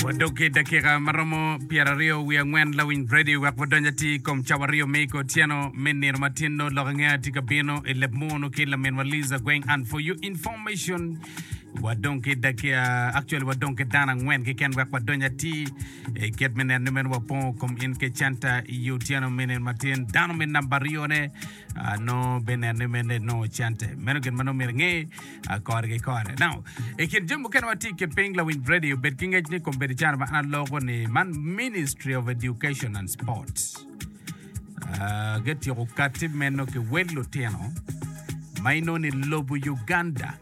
Wadok ki dakika ma romo pyeraryo wiye angwen lawiny Brady wek wadony atir i kom cawaryo me iko otyeno me nino ma tyen nongo lok ange atye ka bino i leb muno ki laminwa Liza Gweng and for your information wadong ki dakika actually wadong ki dano angwen keken wek wadony atir i kit me neno ni meno wapongo kom in ke canta i otyeno me nino ma tyen dano me namba aryone ah, nongo bineno ni mene nongo cante meno gin ma nongo myero inge Kore ki kore. Now, i kin jami mukene ma tye ki piny lawiny radio bed ki ngec ni kombedi cana ma an aloko ni man Ministry of Education and Sports. Ah, getyeko kati meno ki wel lutino ma inongo ni lobo Uganda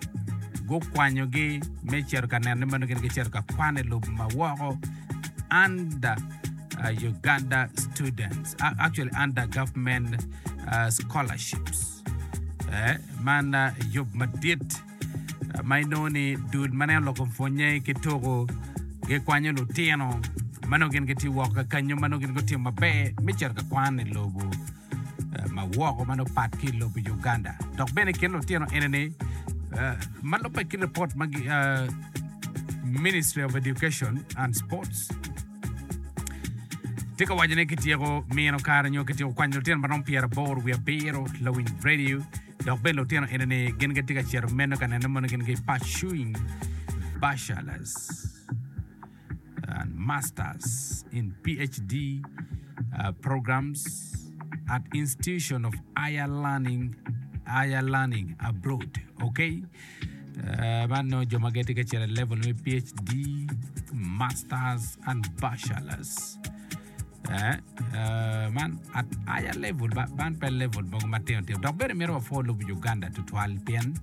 gukwanyogi me cito ka neno ni meno gin gicito ka kwan i lobo ma woko under uh, Uganda students, uh, actually under government uh, scholarships. Eh, man ah, yub madit ah, ma inongo ni dul ma nen oloko pwonye ki tuku gikwanyo lutino ma nongo gin gitye woko ka kanyo ma nongo gin gutimo maber me cito ka kwan i lobo eh, ma woko ma nongo pat ki i lobo Uganda dok bene i kin lutino enini eh, ma lubbe ki ripot ma gi ah, Ministry of Education and Sports Tye ka waco ni kityeko mino kare nyo kityeko kwanyo lutino ma romo pyeraboro wiye abiro lawiny redio dok bene lutino eni gin gitye ka cito meno ka neno mono gin gipursuing bachelors and masters in PhD uh, programs at institution of higher learning higher learning abroad okay Man nongo jo ma gitye ka cito i level me PHD, masters and bachelors. Eh, eh, man at aya level ba- man pe level mogo matino tino dok bene mito wapwo lub Uganda tutwal pien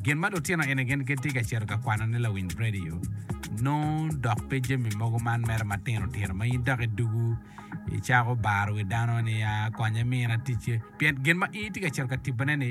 gin ma lutino eni gin gitye ka cito ka kwano ni lawiny radio nongo dok pe jami mogo man mere matino tino ma in dok idugu icako baro wi dano ni ya konya imina ticce pien gin ma in itye ka cito ka tibone ni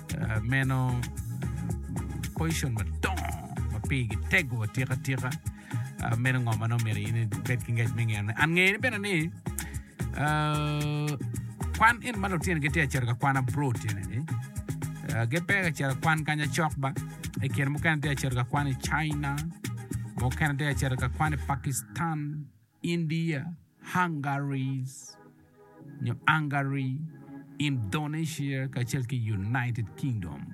meno poison madongo ma pigi tego atika tika meno ngo ma nongo myero in ibed ki ngec me ngeye ne and ngeye bene ni kwan en ma lutino gitye ka cito ka kwan abroad tyene ni gipe ka cito ka kwan kanya cok ba i kine mukene tye ka cito ka kwan i China mukene tye ka cito ka kwan i Pakistan India, Hungaries, nyo Angary, Indonesia, kacel ki United Kingdom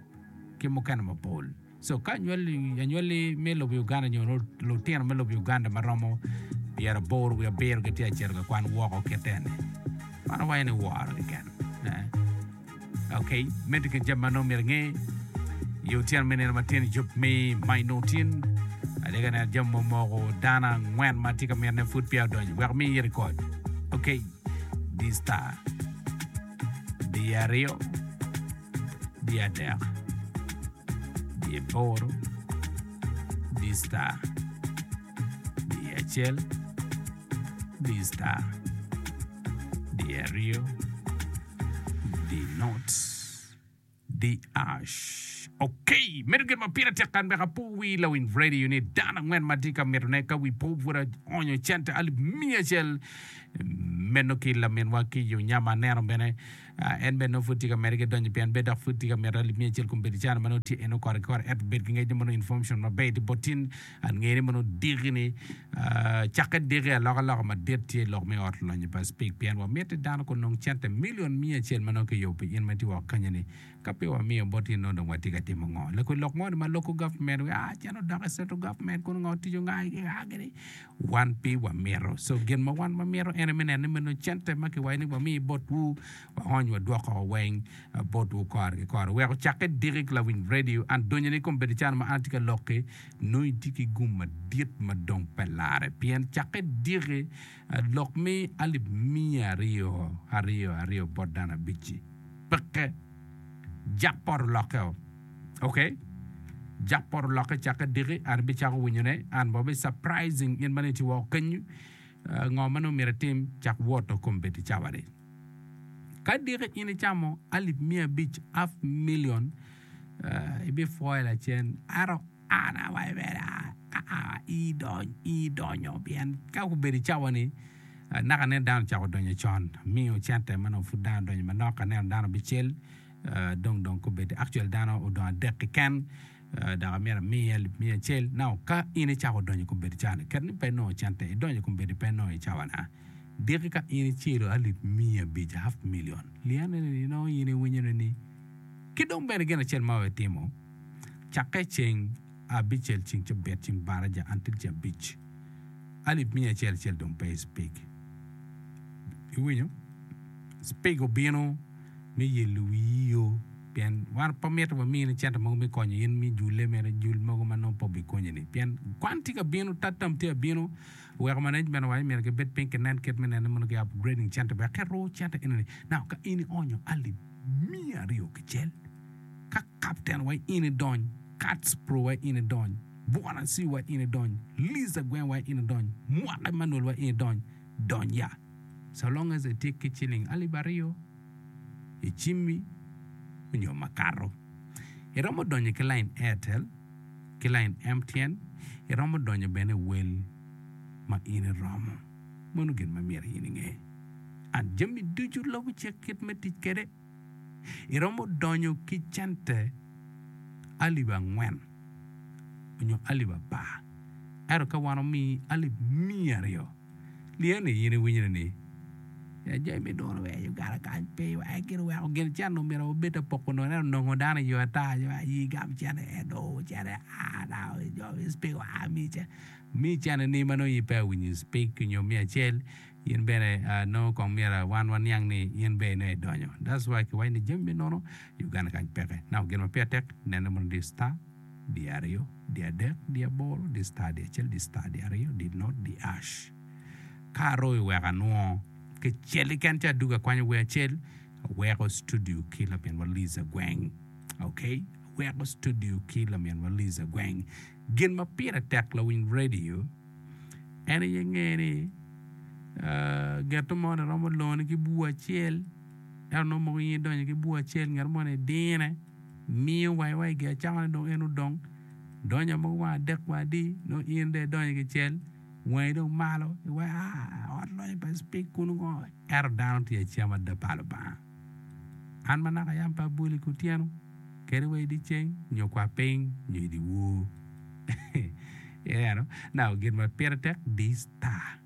ki mukene mapol. So ka anywali, anywali me lobo Uganda nyo lutino me lobo Uganda ma romo pyeraboro wiye abiro gitye ka cito ka kwan woko kitene. Man awaco ni woro keken. Ok, medde ki jami ma nongo myero inge. I otyeno me nino matin i yub me mac nongo tin, atye ka neno jami mo moko dano angwen ma atye ka mitine pud peya odonyo. Wek amiyi rekod. Ok, di star, di aryo, di adek, di aboro, di star, di acel, di star, di aryo, Dii notes, DH, Ok, medo gin ma pire tek kan wek apo wi lawiny radio ni dano angwen ma atye ka mitone ka wi po pud aonyo cente alip miya acel. Meno ki laminwa ki yo nya ma aneno bene ah, en bene nongo pud tye ka medde ki donyo pien bed dok pud tye ka mito alip miya acel kun bedo caro ma nongo tye en nongo kore ki kore ento bed ki ngec ni mono information maber iti bot tin Angene mono diki ni cakke diki alokaloka madit tye lok me ot lonyo pa Speke pien wamit ni dano kunong cente milion miya acel ma nongo kiyubo pi in ma itye woko kanyeni. Ka pe wamiyo bot in nongo dong watye ka timo ngo? Lakwe lok moni ma loko government wi aa cen odok i central government kun ongo tic onga i aa gini wan pe wamito. So gin ma wan wamito en aye me neno ni meno cente ma kiwaco ni wami botwu waony wadwok koko weng botwu kore ki kore. Weko cakke diki ki lawiny radio an donyone i kom bedo calo ma an atye ka lok ki nongo itye ki gum madit ma dong pe larre, pien cakke diki lok me alip miya aryo aryo aryo bot dano abic-ci. Peke. Jak poto lokkeo. Ok? Jak poto lokke cakke diki, an abicako winyone, an bene wabi surprising in ma nongo itye woko kenyu. Ngo ma nongo myero itim? Cak woto kombeddi cawani. Ka diki in icamo alip miya abic, half million, uh, ibipwoyo lacen. Ento an awa ibeda, aa, idony, idonyo, pien ka gubedo i cawa ni, uh, naka nen dano ocako donyo con, miyo cente ma nongo pud dano donyo manok, ka neno dano bicel, uh, dong dong kobedi, actually dano odong adek keken, uh, dok amyero amiye alip miya acel. Now, ka in icako donyo kobedi cawa ni, kadi ni pe inongo cente, idonyo kobedi pe inongo i cawa na. Diki ka in icelo alip miya abic, half million, liane ni nongo in iwinyo ne ni ki dong bene gin acel ma we timo, cakke i ceng abicel ceng cabit ceng baraja until ceng abic alip miya acel acel dong pe i speak iwinyo speak obino me yelo wiyi yo pien wan pe mito wa mine cente mogo me konyo in me jule mere jul mogo ma nongo pe obi konyi ni pien kwan tye ka bino tatam tye ka bino Weko management wa ni myero ki bed piny ki nen kit me nene mono ki upgrading center wek ki ruu center eni ni now ka in i onyo alip miya aryo ki cel ka captain wa in i dony kats pro wa in i dony bwana siu wa in i dony liz agweng wa in i dony mwaka Emmanuel wa in i dony dony ya so long as i tye ki ciling alip aryo i cimmi onyo makato i romo donyo ki line airtel. ki lain M. Tyen iromo donyo bene i wel ma in iromo, meno gin ma myero in inge. And jami ducu lubo cik kit me tic kwede. Iromo donyo ki cente alip angwen onyo alip apar, ento ka wan omiyi alip miya aryo, Lye ni in iwinyone ni, Ya jo imi duru wek aye ogara kany pe iwa, eka gin oweko gin cen omito obed te poko nongo, ento onongo dano i yo ata nyo aye gam cene ento cene aa nao i jo i speak wa ami cen ami cene ni ma nongo in pe awinyo i speak nyo me acel in bene nongo kong myero wan waniang ni in bene nongo idonyo that's why kiwaco ni jami me nono i Uganda kany peke naka gin ma peya tek nene mondo i star di aryo, di adek, di aboro, di star, di acel, di star, di aryo, di not, di ash. Ka aroyo iweko anwongo kecel keken ci adwogo akwanyo wer acel, aweko studio ki laminwa Liz Agweng. Ok, aweko studio ki laminwa Liz Agweng. Gin ma pire tek lawiny rediyo en aye nge ni ah, geto moni romo loni ki bur acel, ento nongo moko in idonyo ki bur acel, ngat moni idine. miyo wangi wa i gi acakane dong en odong donyo mogo wang adek wa adi nongo in dong idonyo ki cel wangi dong malo iwa aa ot lonyo pa speak kunu ngo ento dano tye acama ada pa Lubanga an ma naka yam pe abwoli kutyeno kadi wa idi ceng nyo kwa piny nyo idi wor iyero naka gin ma pire tek di star.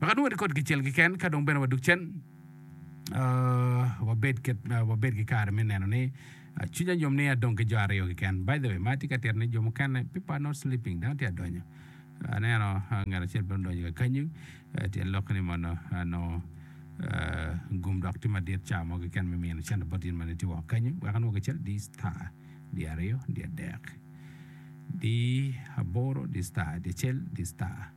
Wek adwong ati kod kicel keken ka dong bene wadug cen, wabed ket wabed ki kare me neno ni cwiny anyom ni adong ki jo aryo keken. By the way, ma tye ka tito ni jo mukene people are not sleeping, dano tye adonyo. Aneno ngat acel bene odonyo ka kanyu, tyen lok ni mono nongo gum dok tye madit ca mo keken me mino cente bot in mani tye woko kanyu. Wek anwong kicel di star, di aryo, di adek, di aboro, di star, di acel, di star.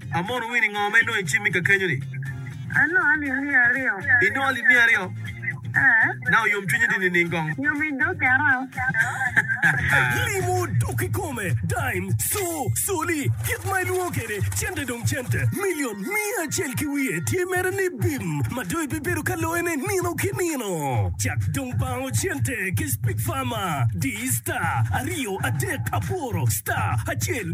Amono wino i ngo ma inongo icimmi kakenyo-ni? Anongo alim miya aryo. Inongo alim miya aryo? Ee. Naka oyom cwinyi di nining kong? Yom i doki aroo. Limo dok kikome, dime, co, coli, kit ma ilwongo kwede, cente dong cente. Milion miya acel ki wiye tye mere ni bim ma dong ibibedo ka loyone nino ki nino. Cak dong bango cente ki Speak Farmer, di star, aryo, adek, aboro, star, acel,